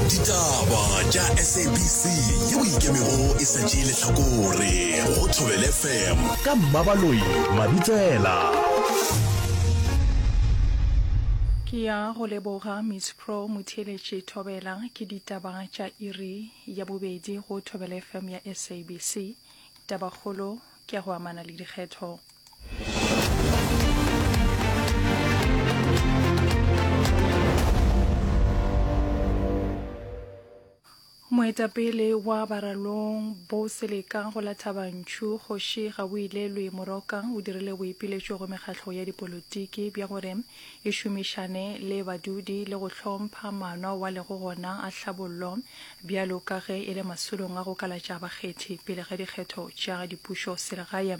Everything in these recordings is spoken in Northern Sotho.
ditaba tša sabc yeo ikemego e sa tšee lehlakore go thobele fm ka mmabaloi mabitsela ke ya go leboga miss pro motheeletše thobela ke ditaba tša iri ya bobedi go thobele fm ya sabc tabakgolo ke ya go amana le dikgetho. moetapele wa baralong bo seleka go la thabantšhu kgoši ga o ilelwe morokang o dirile boipiletšo go mekgahlo ya dipolotiki bja gore e šomišane le badudi le go hlompha maano ao a lego gona a tlhabollo bjalo ka ge e le masolong a go kalatša bakgethi pele ga dikgetho tša dipušo selegae.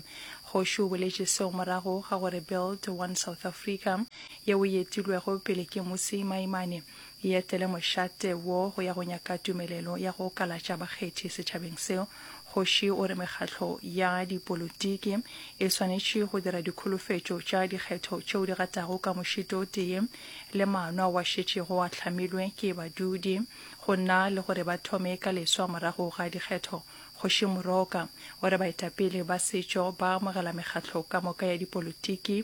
Kgoši o boletše seo morago ga gore Build One South Africa yeo e etilwego pele ke Mmusi Maimane e etele mošate wo go ya go nyaka tumelelo ya go kalatša bakgethi setšhabeng seo. Kgoši o re mekgatlo ya dipolotiki e swanetše go dira dikholofetšo tša dikgetho tšeo di gatago ka mošito o tee le maano ao a šetšego a hlamilwe ke badudi go na le gore ba thome ka leswa morago ga dikgetho. Kgoši Moroka o re baetapele ba setšo ba amogela mekgatlo ka moka ya dipolotiki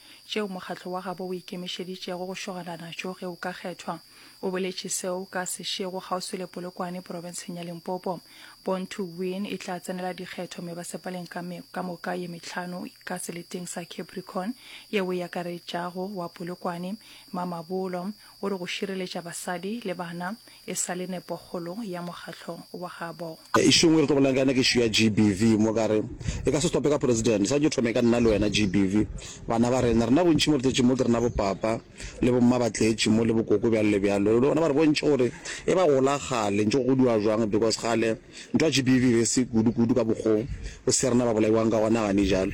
tšeo mokgatlo wa gabo o ikemišeditšego go šogana natšo ge o ka kgethwa. O boletše seo ka sešego kgauswi le Polokwane, porofenseng ya Limpopo. Born to Win e tla tsenela dikgetho mebasepaleng ka, me, ka moka ye metlhano ka seleteng sa Capricorn yeo e akaretšago wa Polokwane, Mamabolo, o re go šireletša basadi le bana e sa le nepokgolo ya mokgatlo wa gabo. Issue engwe e re tlo bolelang ka yona ke issue ya GBV mo ka re e ka se stope ka president, e swanetše e thome ka nna le wena GBV, bana ba rena, rena bontši mo re tletše mo ke rena bo papa le bo mma ba tletše mo le bokoko bjalo le bjalo, le bona ba re bontše gore e ba golagale ntše go godiwa jwang because kgale Ntwa GBV be se kudu kudu ka bokgo o se rena ba bolaiwang ka gona gane jalo.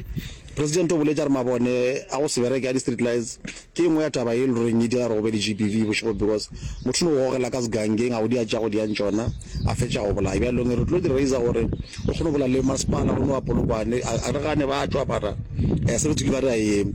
President o boletše a re mabone a go se bereke a di street lights ke engwe ya taba ye le roreng ye dira gore go be le GBV bošego because motho no gogela ka sgangeng a go dia tša go dia ntšona a fetša go bolaya bjalong re tlo di raiser gore o kgone go bola le masepala go no wa Polokwane a re gane ba tšwa mara eh se re tswile ba re a eme.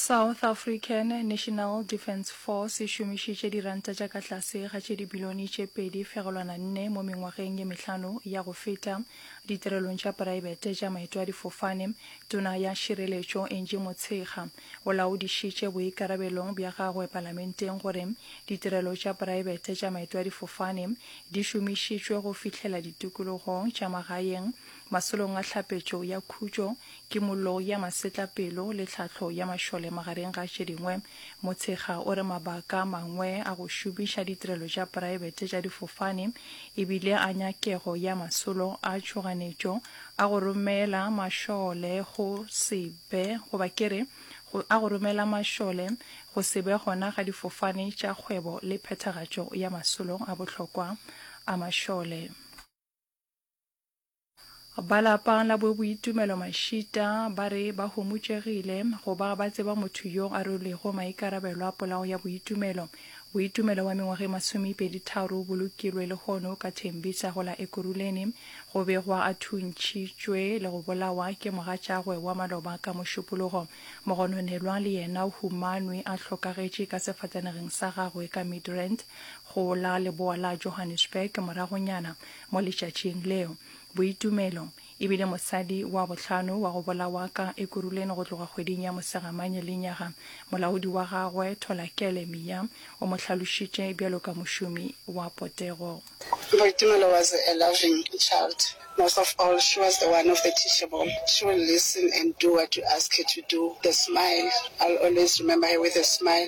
South African National Defence Force e šomišitše diranta tša ka tlase ga tše dibilione tše pedi fegelwana nne mo mengwageng ye mehlano ya go feta ditirelong tša poraebete tša maeto a difofane, tona ya šireletšo Angie Motshekga. O laodišitše boikarabelong bja gagwe Palamenteng gore ditirelo tša praebete tša maetoadifofane di šomišitšwe go fihlela ditikologong tša magaeng, masolong a tlhapetšo ya khutšo, kimollo ya masetlapelo le tlhahlo ya mašole magareng ga tše dingwe. Motshekga o re mabaka a mangwe a go šomiša ditirelo tša praebete tša difofane e bile a nyakego ya masolo a tšhoganetšo a go romela mašole go se be, goba ke re, go, a go romela mašole, go se be gona ga difofane tša kgwebo le phethagatšo ya masolo a bohlokwa a mašole. Ba lapa la Boboitumelo Mashita ba re ba homotšegile go ba ba tseba motho yo a rwelego maikarabelo a polawo ya Boitumelo Boitumelo wa mengwaga e masomepedi-tharo bo lokilwe lehono ka Tembisa go la Ekurhuleni. Go begwa a thuntšhitšwe le go bolawa ke mogatšagwe wa maloba ka Mošupologo. Mogononelwa le yena o humanwe a hlokagetše ka sefatanegeng sa gagwe ka Midrand go la leboa la Johannesburg moragonyana mo letšatšing leo. Boitumelo. E bile mosadi wa bohlano wa go bolawa ka Ekurhuleni go tloga kgweding ya Mosegamanye lenyaga. Molaodi wa gagwe, Tholakele Miya, o mo hlalošitše bjalo ka mošomi wa potego. Boitumelo was a loving child. Most of all, she was the one of the teachable. She will listen and do what you ask her to do. The smile, I'll always remember her with a smile.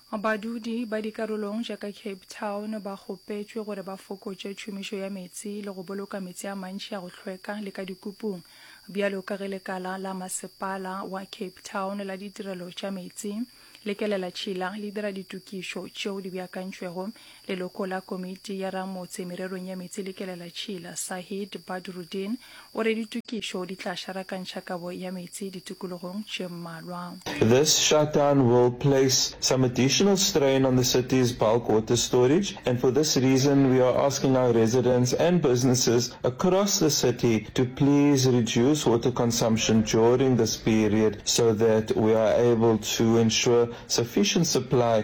Badudi ba dikarolong tša ka Cape Town ba kgopetšwe gore ba fokotše tšhomišo ya meetse le go boloka meetse a mantši a go hlweka le ka dikupung, bjalo ka ge lekala la masepala wa Cape Town la ditirelo tša meetse le kelelatšhila le dira ditokišo tšeo di beakantšwego Leloko la komiti ya ramotse mererong ya meetse le kelelatšhila, Sahid Badruddin, o re ditokišo di tla šarakantšha kabo ya meetse ditokologong tše mmalwa. This shutdown will place some additional strain on the city's bulk water storage and for this reason we are asking our residents and businesses across the city to please reduce water consumption during this period so that we are able to ensure sufficient supply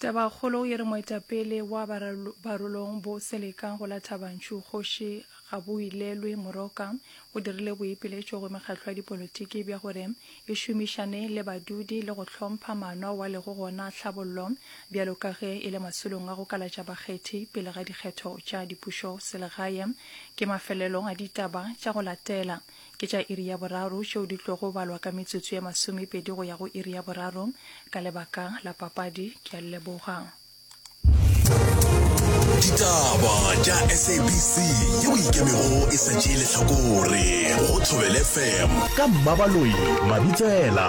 Tabakgolo e re moetapele wa Barolong Bo Seleka go la Thabantšhu Kgoši Gaboilelwe Moroka o dirile boipiletšo go mekgatlo ya dipolotiki bja gore e šomišane le badudi le go hlompha maano ao a lego gona tlhabollo bjalo ka ge e le masolong a go kalatša bakgethi pele ga dikgetho tša dipušoselegae ke mafelelo a ditaba tša go latela. ke tša iri ya boraro tšeo di tlogo balwa ka metsotso ye masomepedi go ya go iri ya boraro ka lebaka la papadi ke a leboga ditaba tša sabc yeo ikemego e sa tšee letlhakore go thobele fm ka mmabaloyi mabitsela